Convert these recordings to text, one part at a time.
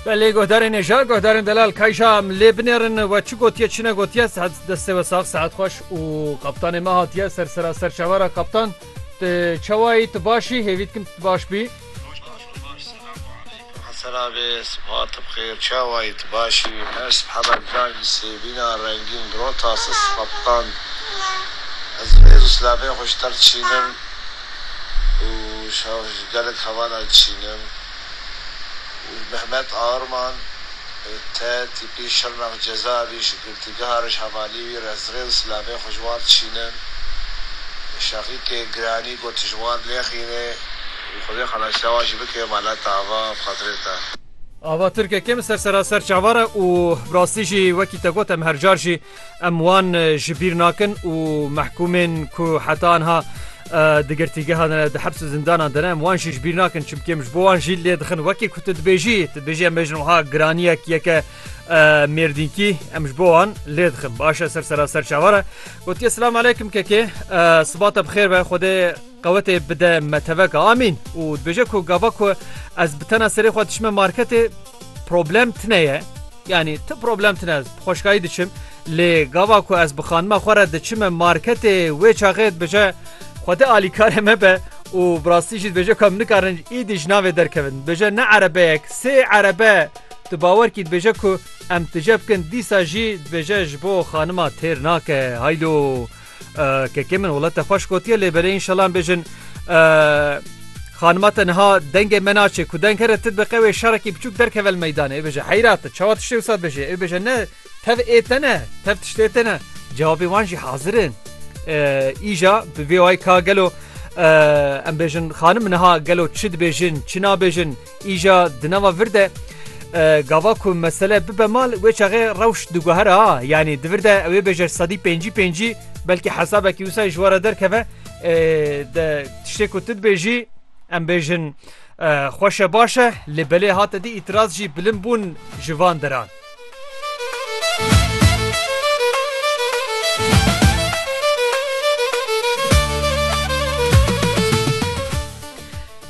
Belê guhdarên hêja, guhdarên delal kayja em lê binêrin we çi gotiye çi negotiye sehet destê we sax sehet xweş û kaptanê me hatiye ser sera ser çavara kaptan tu çewayî tu başî hêvî dikim tu baş bî. Selamê sibahat bi xêr çawayî tu başî her sibeha me giran jî sêvîna rengîn rota siz kaptan ez rêz û silavên xwe ji te re dişînim. û gelek hevala çînin û Mehmet Arman te tîpî Şirnex Cezayirî ji girtîgeha Rejhevalî wî re zirê û silavê xwe ji wan çînin. Şeqîkê Giranî got tu ji wan nexîne û Xwedê xelasîya wan jî bike mala te ava bi xatirê te. Ava Tirkek im ser seraser çavar e û bi rastî jî wekî te got em her car jî Em wan ji bîr nakin û mehkûmên ku heta niha di girtîgeha de ne, di heps û zindanan de ne em wan jî ji bîr nakin çimkî em ji bo wan jî lê dixin. Wekî ku tu dibêjî, tu dibêjî em bêjin wiha giraniyek yeke mêrdînkî em ji bo wan lê dixin. Baş e ser sera ser çawa re. Gotiye Silam aleykum kekê siba te bi xêr be Xwedê qewetê bide me teveka amîn û dibêje ku gava ku ez bi tena serê xwe dişime marketê problem tine ye. Yanî ti problem tune ez bi xweşkayî diçim lê gava ku ez bi xanima xwe re diçime marketê wê çaxê dibêje Xwedê alîkarê me be û bi rastî jî dibêje ku em nikarin îdî ji navê derkevin. Dibêje ne erebeyek sê erebe tu bawer kî dibêje ku em tije bikin dîsa jî dibêje ji bo xanima têr nake. Haylo! Kekê min wala te xweş gotiye lê belê înşela em bêjin xanima te niha dengê me naçê ku deng here ti diqe wê şerekî biçûk derkevel meydanê ê bêje heyra te çawa tiştê wisa dibêje ê bêje ne tev ê te ne tev tiştê te ne cevabê wan jî hazir in îja bi vê wayî ka gelo em bêjin xanim niha gelo çi dibêjin çi nabêjin Îja di nava vir de gava ku mesele bibe mal wê çaxê rewş diguhere ha yanî di vir de ewê bêje sedî pêncî pêncî belkî hesabekî wisa ji were derkeve de tiştê ku tu dibêjî em bêjin xweşe baş e lê belê hate dî îtiraz jî bilim bûn ji van deran.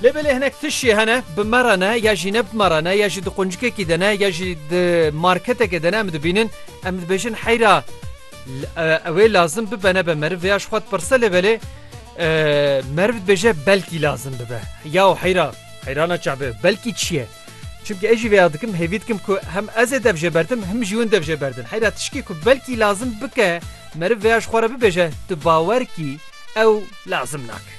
Lê belê hinek tişê hene bi me re ne ya jî ne bi me re ne ya jî di quncikekî de ne ya jî di marketekê de ne em dibînin em dibêjin heyra ew ê lazim bibe nebe meriv vêya ji xwe pirse lê belê meriv dibêje belkî lazim bibe ya û heyra heyrana çabe belkî çi ye Çimkî ez jî vêya dikim, hêvî dikim ku hem ez ê dev jê berdim him jî hûn dev jê berdin. Heyra tişkî ku belkî lazim bike meriv vêya ji xwe re bibêje, tu bawer kî ew lazim nake.